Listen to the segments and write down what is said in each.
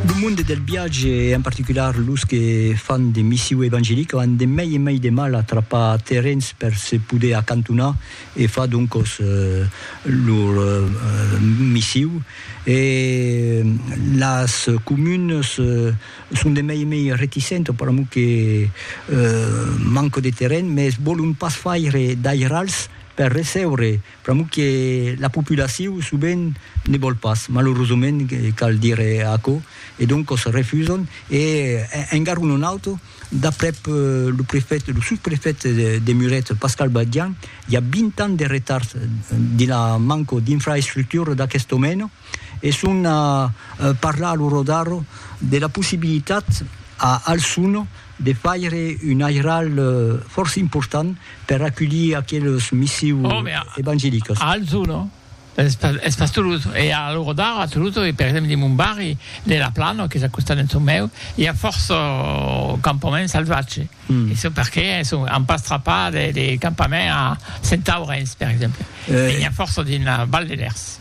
Lo monde del viatge e en particular los que fan de missiu evangelica an de mei e mei de mal a trapar terrens per se poder acantonar e far doncos lor missiu e las comunes son de mei e mei reticentes per amor que manca de terren, mes volon pas faire d'airals per recebre Pr'amor que la populacion sovent ne vòl pas, malorosament cal dire aquò, e doncos refuson e en garron un auto, d'aprèp lo prefèt, lo sosprefèt de Muret, Pascal Badian, i a 20 ans de retard dins la manco d'infraestructura d'aquest domèna e son a parlar a lo Rodaro de la possibilitat a Alçon de faire un airal fòrça important per aculhir aqueles missiu evangelicas. A Alzò, no? Es pas Toulouse. E a l'ora d'ara, a Toulouse, e per exemple dins mon barri de La Plana, qu'es a costat d'en çò meu, i a fòrça campaments salvatges. E çò perqué an pas trapat de campament a Sentaurenç, per exemple. E n'i a fòrça dins la Val de Lèrs.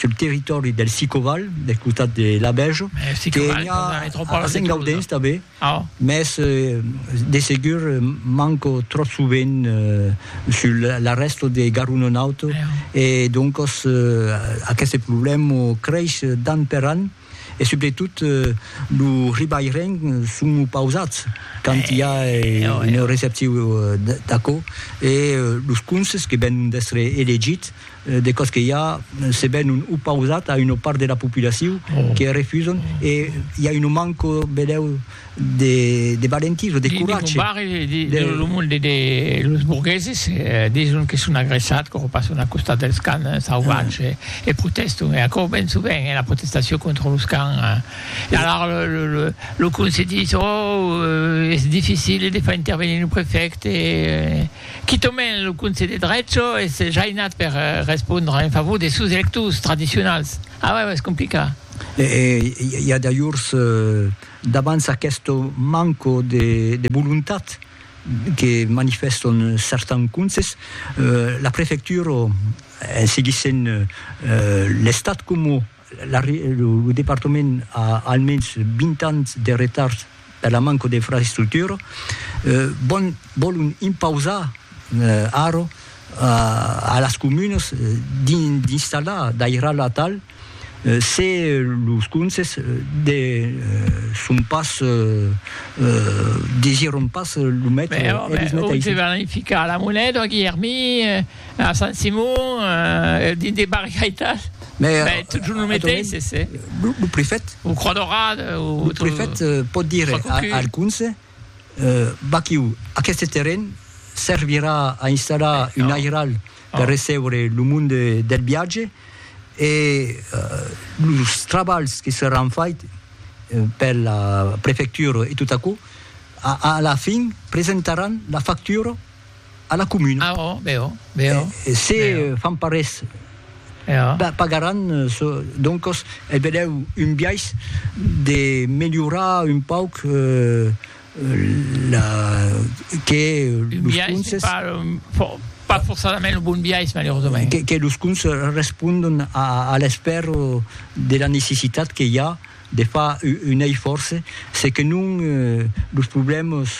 sul territòri del Sicoval, del costat de Labèja, que i a a Sengaudens tanben, mès de segur manco tròp sovent sul la rèsta de Garonenaut e doncas aqueste problèma creis d'an per an. E subretot lo ribaireng son opausats quand i a un receptiu d'aquò e los conses que venon d'èstre elegits de còs que i a se venon opausats a una part de la populacion que refusan e i a un manco, vedèu, de valentís o de coratge. Dins lo barri de lo monde de los borgueses dison que son agressats quò passon al costat dels cans sauvats e protèston e aquò ben sovent es la protestacion contra los cans e alara lo conselh dis ò es dificil de far intervenir lo prefècte quitament lo conselh de drecho es jainat per respondre en favor de sos electors tradicionals a uèi es complicat. E i a d'ajors, davant aquest manco de volontat que manifèston certans conses, la prefectura, en seguissent l'Estat coma lo departament a almens 20 ans de retard per la manca d'infraestructura, vòlon impausar ara a las comunas d'installar d'airal atal, Se los conses de son pas desiront pas lo metre, eles met aisit. Ò, me ficar a la Monet, ò Guilhermí, a Sant Simon, dins de barriaitas, ben totjorn lo meteis, e se. Lo prefèt. Ò Croix Daurada, ò. Lo prefèt pòt dire al conse, vaquiu, aqueste terren servirà a installar un airal per recebre lo monde del viatge e los trabalhs que seràn faits per la prefectura e tot aquò, a la fin presentaràn la factura a la comuna. Ah oh, bèu, bèu. E se fan pas res, pagaràn çò. Doncos, e vedèu un biais de melhorar un pauc. La... que los conses... Un biais, pas forçadament lo bon biais, malerosament. Que los conses respondon a l'espèr de la necessitat que i a de far un eifòrce, se que non los problèmas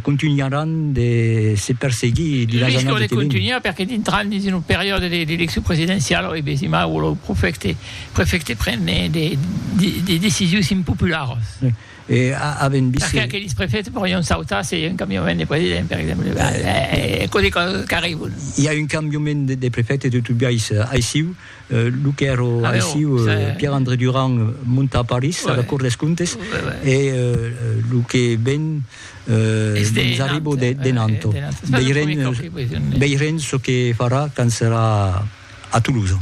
contunharàn de se perseguir dins las annadas que venon. Riscan de contunhar perque dintran dins una periòda d'eleccion presidenciala e besimai lo prefècte pren de decisions impopularas. E avèm vist... Perqué aqueles prefèts pòrion sautar se i a un cambiament de president, per exemple? E cosí qu'arribon? I a un cambiament de prefète de tot biais aissiu. Lo qu'èra aissiu, Pierre-André Durand monta a París, a la Cour des Comptes, e lo que ven mos arriba de Nantes. Veirem çò que farà quand serà a Toulouse.